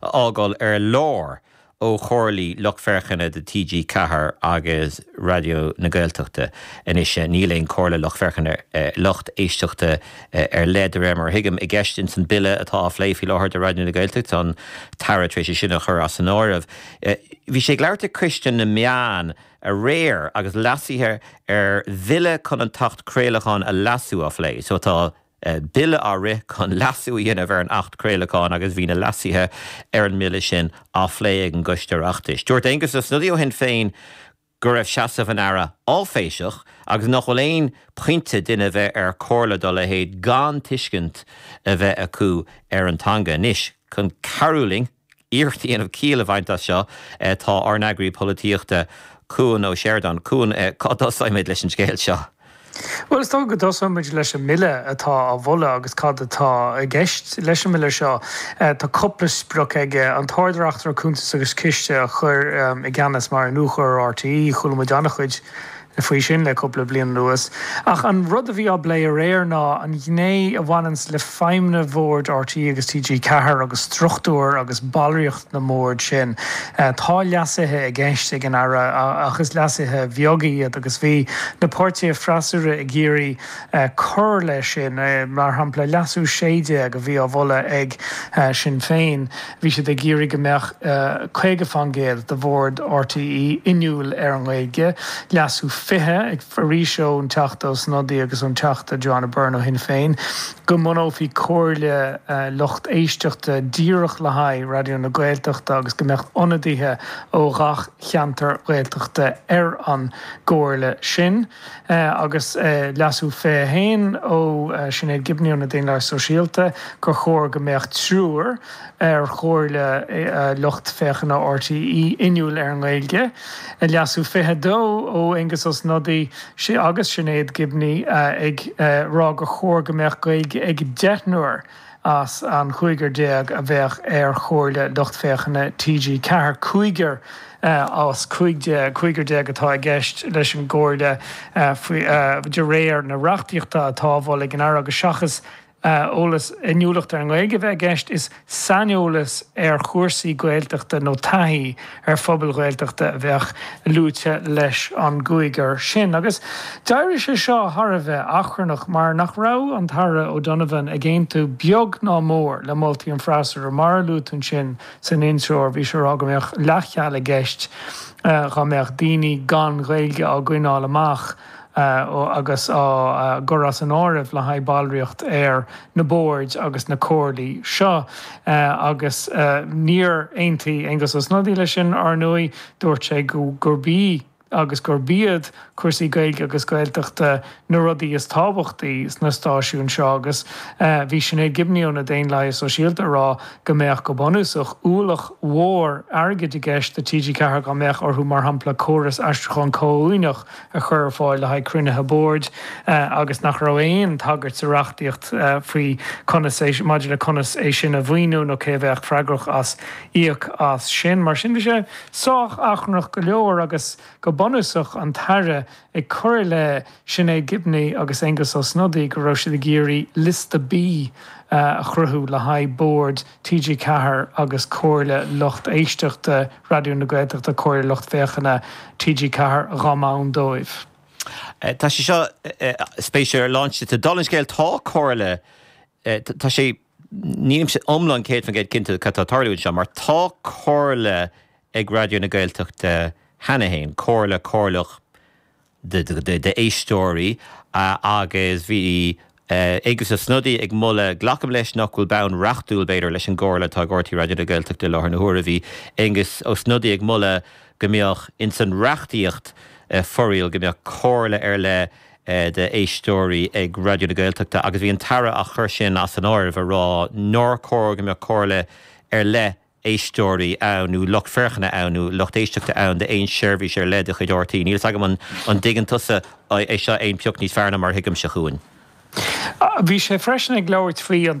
a fhágáil ar lár ó chomhairlí lucht féachana do TG4 agus Raidió na Gaeltachta. Anois níl aon comhairle lucht féachana, lucht éisteachta ar leith, de réir mar a thuigim, i gceist ins an Bille atá á phlé faoi láthair do Raidió na Gaeltachta, tá an tAire tar éis é sin a chur as an áireamh. Bhí sé ag labhairt ag Coiste na Meán aréir agus leasuithe ar Bhille chun an tAcht Craolacháin a leasú á phlé, so tá Bille á rith chun leasú a dhéanamh ar an Acht Craolacháin agus bhí na leasuithe ar an mBille sin á phlé ag an gCoiste Oireachtais. Dúirt Aengus Ó Snodaigh ó Shinn Féin go raibh seasamh an Aire áiféiseach agus nach bhfuil aon pointe duine bheith ar chomhairle dá leithéid gan tuiscint a bheith acu ar an teanga. Anois, chun cabhrú linn, iarracht a dhéanamh ciall a bhaint as seo, tá ár n-eagraí polaitíochta, Cuan Ó Seireadáin. Cuan, cá dtosoimid leis an scéal seo? Bhuel, is dócha go dtosoimid leis an mBille atá á mholadh agus cad atá i gceist leis an mBille seo. Tá cúpla sprioc aige, an tArd-Reachtaire Cuntas agus Ciste a chur i gceannas mar iniúchóir RTÉ, chuala muid an-chuid, faoi sin le cúpla bliain anuas, ach an rud a bhí á phlé aréir ná an ghné a bhaineanns le feidhmeanna bhord RTÉ agus TG4 agus struchtúr agus ballraíocht na mbord sin. Tá leasuithe i gceist ag an Aire ach is leasuithe beaga iad agus bhí na páirtithe freasúra ag iarraidh cur leis sin, mar shampla leasú 16 a bhí á mholadh ag Sinn Féin. Bhí siad ag iarraidh go mbeadh 50 faoin gcéad de bhord RTÉ inniúil ar an nGaeilge, Leasú 20, ag, arís ón Teachta Ó Snodaigh agus ón Teachta Joanna Byrne ó Shinn Féin, go mbunófaí comhairle lucht éisteachta díreach le haghaidh Raidió na Gaeltachta agus go mbeadh ionadaithe ó ghach cheantar Ghaeltachta ar an gcomhairle sin. agus Leasú 21 ó Sinéad Gibney ó na Daonlathaigh Sóisialta, gur chóir go mbeadh triúr ar chomhairle lucht féachana RTÉ inniúil ar an nGaeilge, Leasú 22 ó Aengus Ó Snodaigh agus Sinéad Gibney ag rá gur chóir go mbeadh Gaeilge ag deichniúr. as an gcúigear déag a bheadh ar Chomhairle Lucht Féachana TG4, cúigear as cúig déag, cúigear déag atá i gceist leis an gComhairle faoi, de réir na reachtaíochta atá á mholadh ag an Aire, agus seachas eolas, inniúlacht ar an nGaeilge a bheith i gceist, is saineolas ar chúrsaí Gaeltachta nó taithí, ar phobail Ghaeltachta a bheadh luaite leis an gcúigear sin, agus d'éirigh sé seo thar a bheith achrannach mar nach raibh an tAire O'Donovan ag aontú beag ná mór le moltaí an fhreasúra, mar a luadh ansin san intreoir, bhí sé a rá go mbeadh leathcheal i gceist dá mbeadh daoine gan Ghaeilge á gcoinneáil amach. agus á gcur as an áireamh le haghaidh ballraíocht ar na boird agus na comhairlí seo, agus níor aontaigh Aengus Ó Snodaigh leis sin, ar ndóigh, dúirt sé gurb í agus gurb iad cúrsaí Gaeilge agus Gaeltachta na rudaí is tábhachtaí sna stáisiúin seo agus bhí Sinéad Gibney ó na Daonlathaithe Sóisialta ag rá go mbeadh, go bunúsach, ualach mhór airgid i gceist do TG4 dá mbeadh orthu, mar shampla, córas aistriúcháin comhuaineach. a chur ar fáil le haghaidh cruinnithe boird agus nach raibh aon tagairt sa reachtaíocht faoi conas é maidir le conas é sin a mhaoiniú nó cé a bheadh freagrach as íoc as sin. Mar sin bhí sé sách achrannach go leor agus go bunúsach an tAire ag cur i leith Sinéad Gibney agus Aengus Ó Snodaigh go raibh siad ag iarraidh liosta B a chruthú le haghaidh bord TG4 agus Comhairle Lucht Éisteachta Raidió na Gaeltachta, Comhairle Lucht Féachana TG4, dhá mbonn dóibh. Tá sé seo spéisiúil ar láinte sa dul an scéil, tá Comhairle, tá sé, nílimse iomlán 100% cinnte cad tá ag tarlú anseo, mar tá Comhairle ag Raidió na Gaeltachta cheana fhéin, Comhairle, Comhairleach, d'éisteoirí agus bhí Aengus Ó Snodaigh ag moladh, glacaim leis nach bhfuil bonn reachtúil, b'fhéidir, leis an gcomhairle atá ag RTÉ Raidió na Gaeltachta i láthair na huaire, bhí Aengus Ó Snodaigh ag moladh go mbeadh ins an reachtaíocht foráil go mbeadh comhairle ar leith d'éisteoirí ag Raidió na Gaeltachta agus bhí an tAire á chur sin as an áireamh ag rá nár chóir go mbeadh comhairle ar leith éisteoirí ann nó lucht féachana ann, nó lucht éisteachta ann d'aon seirbhís ar leith de chuid RTÉ. Níl fhios agam an dtuigeann tusa é seo aon phioc níos fearr ná mar a thuigimse. a Chuain. Bhí sé freisin ag labhairt faoi an.